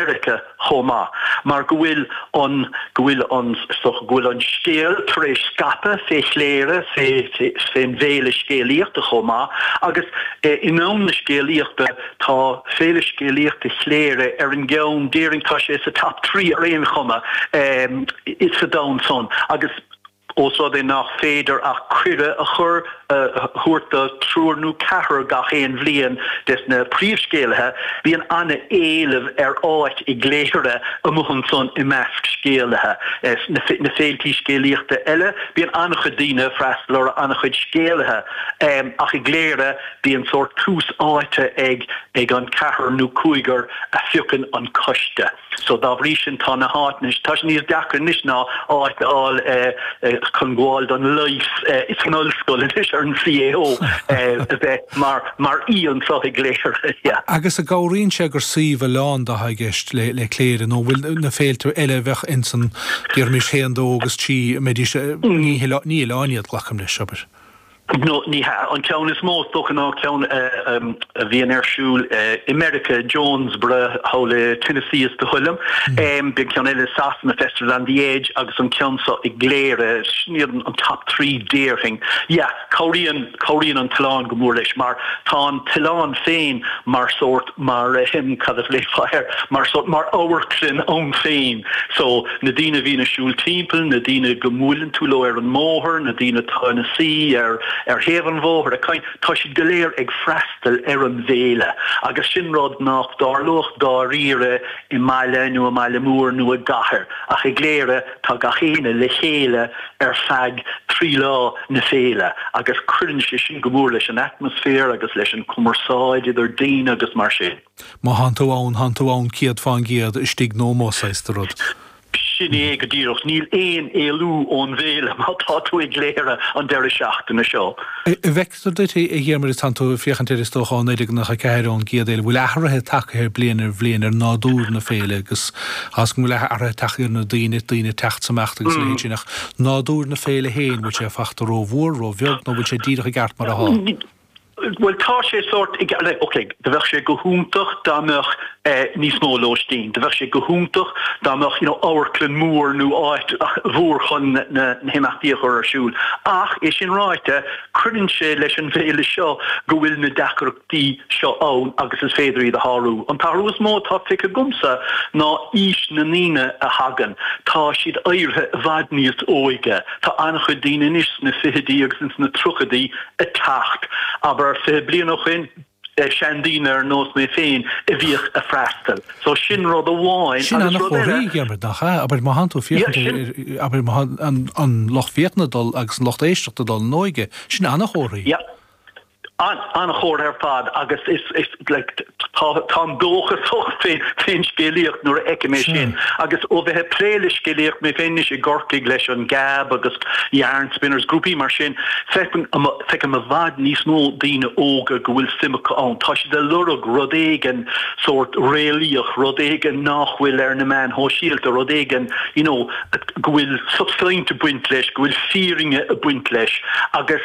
Mheiriceá chomh maith, mar go bhfuil an go bhfuil an so go bhfuil an scéal tar éis scaipeadh fé chléire fé fén bhféile scéalaíochta chomh maith agus i ndomhan na scéalaíochta tá Féile Scéalaíochta Chléire ar an gceann déarfainn tá sé sa top three ar aon chuma sa domhan san agus Ós rud é nach féidir ach cuireadh a chur thabhairt do thriúr nó ceathrar gach aon bhliain des na príomhscéalaithe, bíonn an-éileamh ar áit i gCléire amuigh ansan i measc scéalaithe. Sna féiltí scéalaíochta eile bíonn an-chuid daoine ag freastal orthu, an-chuid scéalaithe, ach i gCléire bíonn sórt tús áite ag an ceathrar nó cúigear a phiocann an coiste. So dá bhrí sin tá na háiteanna, tá sé níos deacra anois ná áit a fháil chun gabháil don leigheas san ollscoil anois ar an CAO a bheith mar aoi anso i gCléire. Agus an gcabhraíonn sé gur suíomh oileánda atá i gceist le le Cléire nó bhfuil na féilte eile a bheadh ins an, déarfaimis haon, dó agus trí, mbeidís, ní oileáin iad, glacaim leis, abair. No ní hea, an ceann is mó, is dócha, ná ceann a bhíonn ar siúl i Meiriceá, Jonesboro, thall i Tennessee is dóigh liom. Bíonn ceann eile i Sasana, Festival at the Edge, agus an ceann so i gCléire, sin iad an top three déarfainn. Yeah, cabhraíonn cabhraíonn an t-oileán go mór leis mar tá an t-oileán féin mar sórt, mar ahem, cad a ghlaofá air, mar sórt, mar amharclann ann féin. So, na daoine a bhíonn ag siúl timpeall, na daoine go mbuaileann tú leo ar an mbóthar, na daoine atá ina suí ar, ar thaobh an bhóthair ag caint, tá siad go léir ag freastal ar an bhféile agus sin rud nach dtarlódh dáiríre i mbaile nó i mbaile mór nó i gcathair ach i gCléire, Tá gach éinne le chéile ar feadh trí lá na féile agus cuireann sé sin go mór leis an atmaisféar agus leis an cumarsáid idir daoine agus mar sin. Má thánn tú ann, thánn tú ann céad fán gcéad, istigh nó amuigh saghas de rud. Sin é go díreach. Níl aon éalú ón bhféile má tá tú i gCléire an deireadh seachtaine seo. Is dóichí, a Dhiarmuid, tánn tú ag féachaint air is dócha ó naoi déag nócha ceathair ón gcéad fhéile, bhfuil athruithe tagtha air bliain ar bhliain ar nádúr na féile tá fhios agam go bhfuil athruithe tagtha ar na daoine, daoine ag teacht 's imeacht agus a leithéid sin ach nádúr na féile féin bhfuil sé fachta ró-mhór, ró-bheag nó bhfuil sé díreach i gceart mar atá? Bhuel tá sé sórt i gceart, ok do bheadh sé go hiontach dá mbeadh níos mó lóistín, do bheadh sé go hiontach dá mbeadh you know amharclann mór nó áit mhór chun na himeachtaí a chur ar siúl ach é sin ráite, Cuireann sé leis an bhféile seo go bhfuil na deacrachtaí seo ann agus is féidir iad a shárú. An t-athrú is mó atá feicthe agamsa ná aois na ndaoine a thagann. Tá siad éirithe i bhfad níos óige. Tá an-chuid daoine anois sna fichidí agus ins na tríochaidí ag teacht. Abair fiche bliain ó shin, seandaoine ar nós mé féin a bhíodh a' freastal. So sin rud amháin Sin ana-chomhartha, a Dhiarmuid, nach ea? Abair, má thánn tú ag féachaint, an lucht féachana ag dul agus an lucht éisteachta ag dul in óige, sin ana-chomhartha. yeah, an, ana-chomhartha ar fad agus is, is like, t- tá, táim dóchasach fé, fén scéalaíocht nuair a fheicim é sin agus ó bheith a' plé le scéalaíocht mé féin anois i gCorcaigh leis an Gab agus yarn Spinners Grúpaí mar sin, feicim i bhfad níos mó daoine óga go bhfuil suim acu ann. Tá siad a lorg rud éigin sórt réalaíoch, rud éigin nach bhfuil ar na meáin shóisialta, rud éigin you know go bhfuil substaint ag baint leis, go bhfuil fírinne ag baint leis agus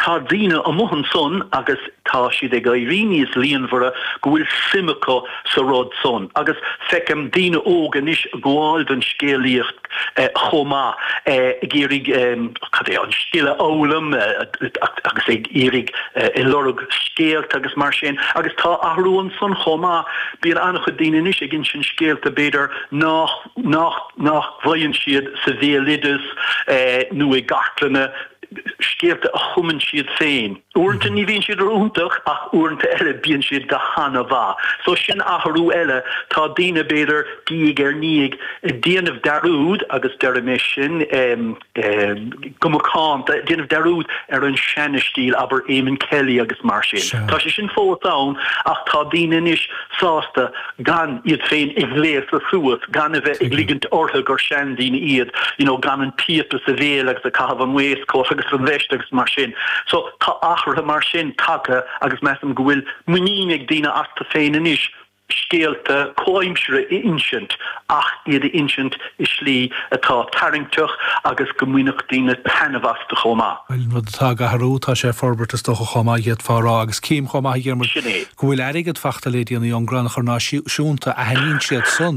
tá daoine amuigh ansan agus tá siad ag éirí níos líonmhaire go bhfuil suim acu sa rud san agus feicim daoine óga anois ag gabháil don scéalaíocht chomh maith, ag iarraidh cad é, an scil a fhoghlaim agus ag iarraidh ag lorg scéalta agus mar sin agus tá athrú ansan chomh maith bíonn an-chuid daoine anois ag insint scéalta b'fhéidir nach nach nach bhfaigheann siad sa bhéaloideas nó i gcartlanna scéalta a chumann siad féin Uaireanta ní bhíonn siad ró-iontach ach uaireanta eile bíonn siad go han-mhaith. So sin athrú eile. Tá daoine, b'fhéidir, diaidh ar ndiaidh ag déanamh dearúd, agus deirim é sin go macánta, ag déanamh dearúd ar an seana-stíl, abair Eamonn Kelly agus mar sin. Tá sé sin fós ann ach tá daoine anois, sásta gan iad féin a ghléasadh suas, gan a bheith ag ligint orthu gur seandaoine iad, you know, gan an píopa sa bhéal agus ag caitheamh an waistcoat agus an veist agus mar sin. So tá athruithe mar sin tagtha agus measaim go bhfuil muinín ag daoine astu féin anois scéalta comhaimseartha a insint ach iad a insint i slí atá tarraingteach agus go mbainfeadh daoine taitneamh astu chomh maith. Bhuel, aon rud atá ag athrú, tá sé ag forbairt is dócha chomh maith, d'fhéadfá a rá, agus cím chomh maith, a Dhiarmuid, go bhfuil airgead faighte le déanaí ón gcrann chur náisiúnta, aithníonn siad san.